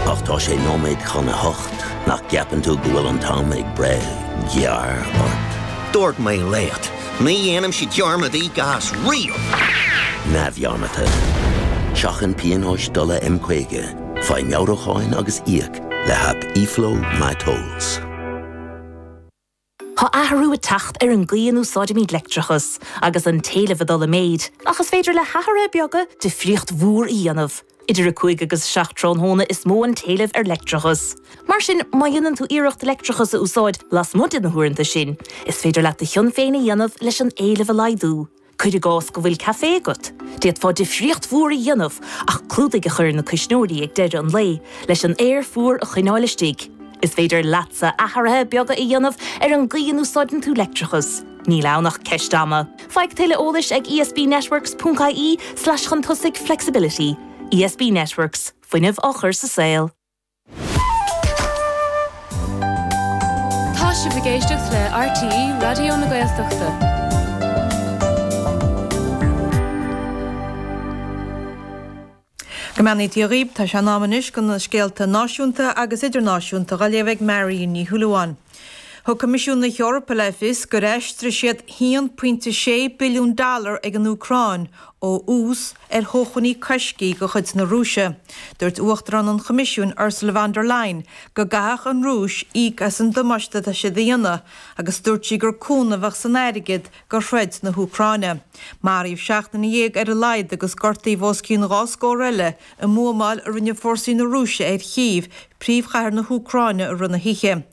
Ach tá sé nóiméad chun a hocht, nach gceapann tú go bhfuil an t-am ag breith gearr ort? Dúirt mé leat, ní dhéanaimse dearmad gí gás riamh! neamhdhearmadta. Seachain pionóis dola M50, faigh meabhrúcháin agus íoc le haip eFlow MyTolls. Tá athrú ag teacht ar an gcaoi a n-úsáidimid leictreachas, agus an t-éileamh ag dul i méid, ach is féidir le hathruithe beaga difríocht mhór a dhéanamh. Idir 5 agus 7 tráthnóna is mó an t-éileamh ar leictreachas. Mar sin, má dhéanann tú iarracht leictreachas a úsáid lasmuigh de na huaireanta sin, is féidir leat do chion féin a dhéanamh leis an éileamh a laghdú. Cuir i gcás go bhfuil caife agat, d'fhéadfá difríocht mhór a dhéanamh ach clúdaigh a chur ar na cuisneoirí ag deireadh an lae leis an aer fuar a choinneáil istigh. Is féidir leatsa athruithe beaga a dhéanamh ar an gcaoi a n-úsáideann tú leictreachas, níl ann ach ceist ama! Faigh tuilleadh eolais ag ESBnetworks.ie slash chun tosaigh flexibility. ESB Networks, fuinneamh á chur sa saol. Tá sibh ag éisteacht le RTÉ Raidió na Gaeltachta. Go mbeannaí Dia dhaoibh, tá sé in am anois do na scéalta náisiúnta agus idirnáisiúnta dhá léamh ag Marion Ní Shúilleabháin. Thug Coimisiún na hEorpa le fios gur aistrigh siad 1.6 billiún dollar ag an Úcráin ó ús ar shócmhainní coiscthe de chuid na Rúise. Dúirt Uachtarán an Choimisiúin Ursula von der Leyen go gcaithfeadh an Rúis íoc as an damáiste atá sí a dhéanamh agus dúirt sí gur cúnamh a bheadh san airgead do throid na hÚcráine. Maraíodh seacht nduine dhéag ar a laghad agus gortaíodh os cionn dhá scór eile I mbuamáil a rinne fórsaí na Rúise ar Chív, príomhchathair na hÚcráine, i rith na hoíche,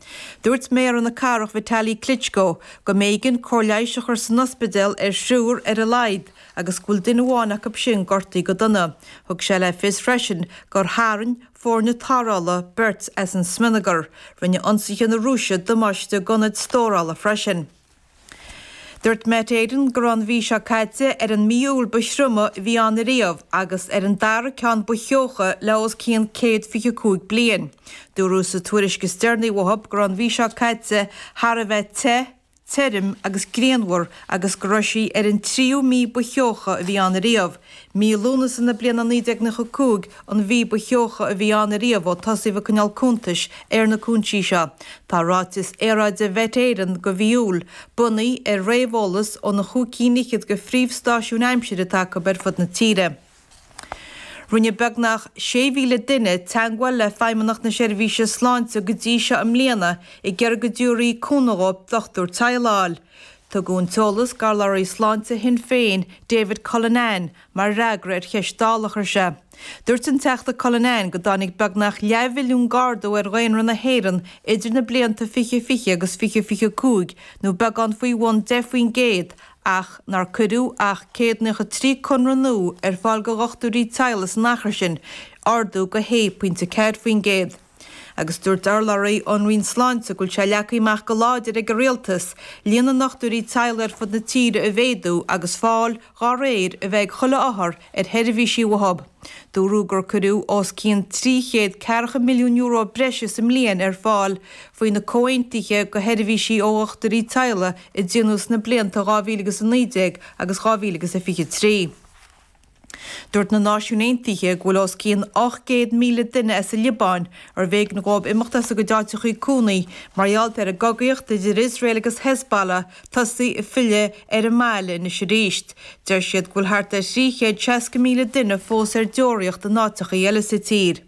dúirt méara na cathrach Vitali Klitschko go mb'éigean cóir leighis a chur san ospidéal ar thriúr ar a laghad agus go bhfuil duine amháin acu sin gortaithe go dona. Thug sé le fios freisin gur tharraing foirne tarrthála beirt as an smionagar. Rinne ionsaithe na Rúise damáiste d'ionaid stórála freisin. Dúirt Met Éireann go raibh an mhí seo caite ar an mí Iúil ba thrioma a bhí ann riamh agus ar an dara ceann ba theocha le os cionn 125 bliain. Dúradh sa tuairisc is deireanaí uathu go raibh an mhí seo caite thar a bheith te, tirim agus grianmhar agus go raibh sí ar an tríú mí ba theocha a bhí ann riamh Mí Lúnasa na bliana 1995 an mhí ba theocha a bhí ann ariamh ó tosaíodh ag coinneáil cuntais ar na cúinsí seo. Tá ráiteas aeráide Mhet Éireann do mhí Iúil bunaithe ar réamheolas ó na chúig cinn fhichead de phríomhstáisiúin aimsire atá acu ar fud na tíre. Rinne beagnach 6,000 duine teangmháil le Feidhmeannacht na Seirbhíse Sláinte go dtí seo i mbliana i gceal go dtiúrfaí cúnamh ó dhochtúir teaghlaigh a fháil. Tugadh an t-eolas d'urlabhraí Sláinte Shinn Féin, David Cullinane, mar fhreagra ar cheist Dála a chuir sé. Dúirt an Teachta Cullinane go dtáinig beagnach leathmhilliún d'ardú ar dhaonra na hÉireann idir na blianta 2020 agus 2025 nó beagán faoi bhun 10 faoin gcéad ach nár cuireadh ach 193 conradh nua ar fáil do dhochtúirí teaghlaigh san achar sin, ardú de 1.4 faoin gcéad. Agus dúirt urlabhraí ón Roinn Sláinte go bhfuil sé leagtha amach go láidir ag an Rialtas líon na ndochtúirí teaghlaigh ar fud na tíre a mhéadú agus fáil dá réir a bheith ag chuile othar ar sheirbhísí uathu. Dúradh gur cuireadh os cionn trí chéad ceathracha milliún euro breise sa mbliain ar fáil faoi na comhaontuithe do sheirbhísí ó dhochtúirí teaghlaigh a déanadh sna blianta 2019 agus 2023. Dúirt na Náisiúin Aontaithe go bhfuil os cionn 800,000 duine as an Liobáin arbh éigean dhóibh imeacht as a gcuid áiteachaí cónaí mar gheall ar an gcogaíocht idir Iosrael agus Hezbollah tosaithe ag filleadh ar an mbaile anois arís. Deir siad go bhfuil thart ar thrí chéad seasca míle duine fós ar deoraíocht in áiteachaí eile sa tír.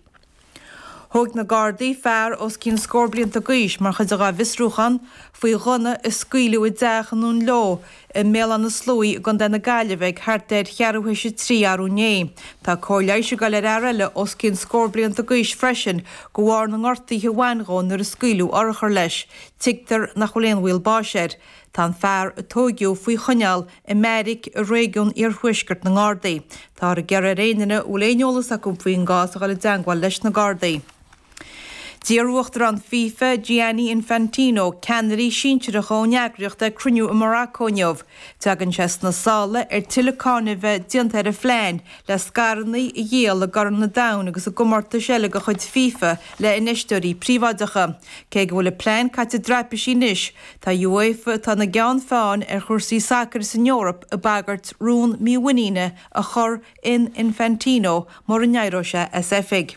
Thóig na Gardaí fear os cionn scór blianta d'aois mar chuid dá bhfiosrúchán faoi ghunna a scaoileadh i dteach i nDún Leo i mBéal Átha na Sluaighe i gContae na Gaillimhe ag thart ar cheathrú théis a trí arú inné. Tá cóir leighis ag dul ar fhear eile os cionn scór blianta d'aois freisin de bharr na ngortaíthe a bhain dhó nuair a scaoileadh urchar leis. Tuigtear nach bhfuil aon bhaol báis air. Tá an fear a tóigeadh faoi choinneáil i mbeairic i réigiún iarthuaiscirt na nGardaí. Táthar ag iarraidh ar aon duine a bhfuil aon eolas acu faoin gcás a dhul i dteangmháil leis na Gardaí. D'iarr Uachtarán fifa, Gianni Infantino, ceannairí sinsearacha ón eagraíocht chuig cruinniú i Maracó inniu. Tagann sé sna sála ar tuilleadh cáineadh a bheith déanta ar a phlean le scaireanna a dhíol i gCorn an Domhain agus i gcomórtais eile de chuid fifa le infheisteoirí príobháideacha. Cé go bhfuil an plean caite i dtraipisí anois, Tá UEFA atá ina gceann feáin ar chúrsaí sacair san Eoraip ag bagairt rún mímhuiníne a chur in Infantino mura n-éireoidh sé as oifig.